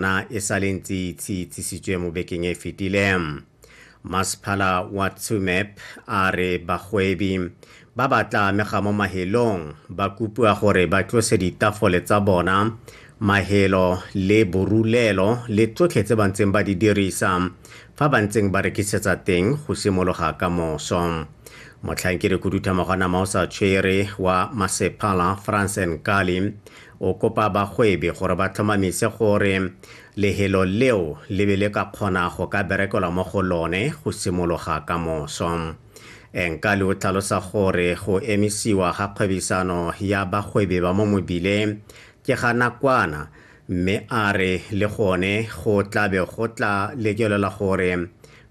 na e sa le ntse itse itsisitswe mo bekeng e fetile masephala wa tsumep a re bagwebi ba ba tla amega mo mahelong ba kopiwa gore ba tlose ditafole tsa bona mahelo le borulelo le tsotlhe tse ba ntseng ba di dirisa fa ba ntseng ba rekisetsa teng go simologa ka moso motlhankedi khuduthamago wa nama o sa tshwere wa masephala france nkali O kopa bagwebi gore ba tlhomamise gore lehelo leo le be le ka kgona go ka berekelwa mo go lone go simologa ka moso. Enkali o tlhalosa gore go emisiwa ga kgwebisano ya bagwebi ba mo mobile ke ga nakwana mme a re le gone go tla be go tla lekelelwa gore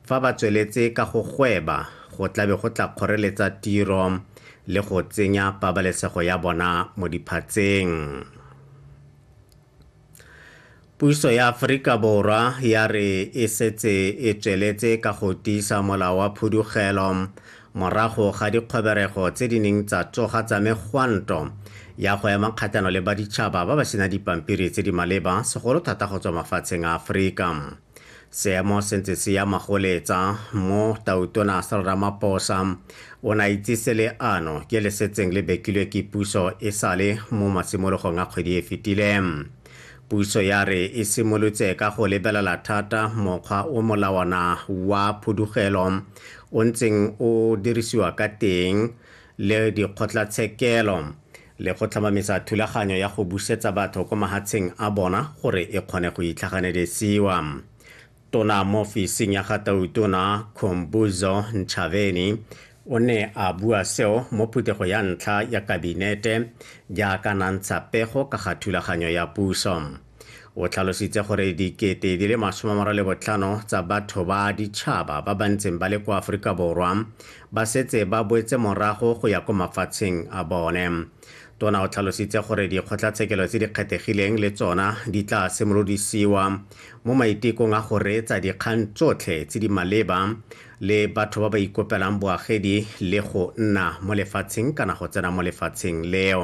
Fa ba tsweletse ka go gweba, go tla be go tla kgoreletsa tiro le go tsenya pabalesego ya bona mo diphatseng. Puso ya Aforika Borwa ya re e setse e tsweletse ka go tiisa molao wa phudugelo morago ga dikgoberego tse di neng tsa tsoga tsa megwanto ya go ema kgatlhano le baditšhaba ba ba sena dipampiri tse di maleba, segolo thata go tswa mafatsheng a Aforika. seemo se ntse se ya magoletsa mo tautona Cyril Ramaphosa o ne a itsise le ano ke le setseng le bekilwe ke puso e sale mo matshimologong a kgwedi e fetile puso ya re e simolotse ka go lebelela thata mokgwa o molawana wa phudugelo o ntseng o dirisiwa ka teng le dikgotlatshekelo le go tlhomamisa thulaganyo ya go busetsa batho ko mahatsheng a bona gore e kgone go itlhaganelesiwa. Tona mo ofising ya ga Tautona Khumbudzo Ntshavheni o ne a bua seo mo phuthego ya ntlha ya Kabinete jaaka nantsha pego ka ga thulaganyo ya puso. O tlhalositse gore dikete di le masome mara le botlhano tsa batho ba ditšhaba ba ba ntseng ba le kwa Aforika Borwa ba setse ba boetse morago go ya ko mafatsheng a bone. Tona o tlhalositse gore dikgotlatshekelo tse di kgethegileng le tsona di tla simolodisiwa mo maitekong a go reetsa dikgang tsotlhe tse di maleba le batho ba ba ikopelang boagedi le go nna mo lefatsheng kana go tsena mo lefatsheng leo.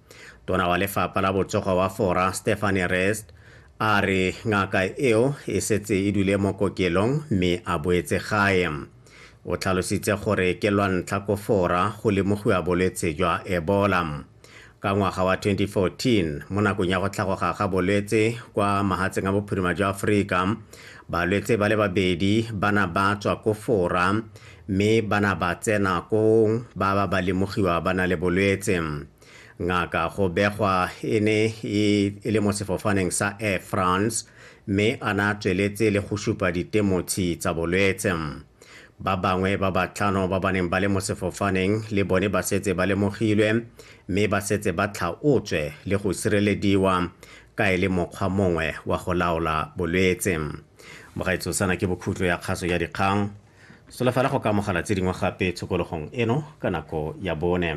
tona wa lefapha la botsogo wa fora stephane rest a re ngaka eo e setse e dule mo kokelong mme a boetse gae o tlhalositse gore ke lwa ntlha ko fora go lemogiwa bolwetse jwa ebola ka ngwaga wa 2014 mo nakong ya go tlhagoga ga bolwetse kwa mahatseng a bophirima jwa aforika balwetse ba le babedi ba na ba tswa ko fora mme ba na ba tsena koo ba ba ba lemogiwa ba na le bolwetse. Ngaka go begwa e ne e, e le mo sefofaneng sa Air France mme a na tsweletse le go supa ditemotshi tsa bolwetse. Ba bangwe ba batlhano ba ba neng ba le mo sefofaneng le bone ba setse ba lemogilwe mme ba setse ba tlhaotswe le go sirelediwa ka e le mokgwa mongwe wa go laola bolwetse. Mogaetsosana ke bokhutlo ya kgaso ya dikgang. Solofela go ka amogela tse dingwe gape tshokologong eno ka nako ya bone.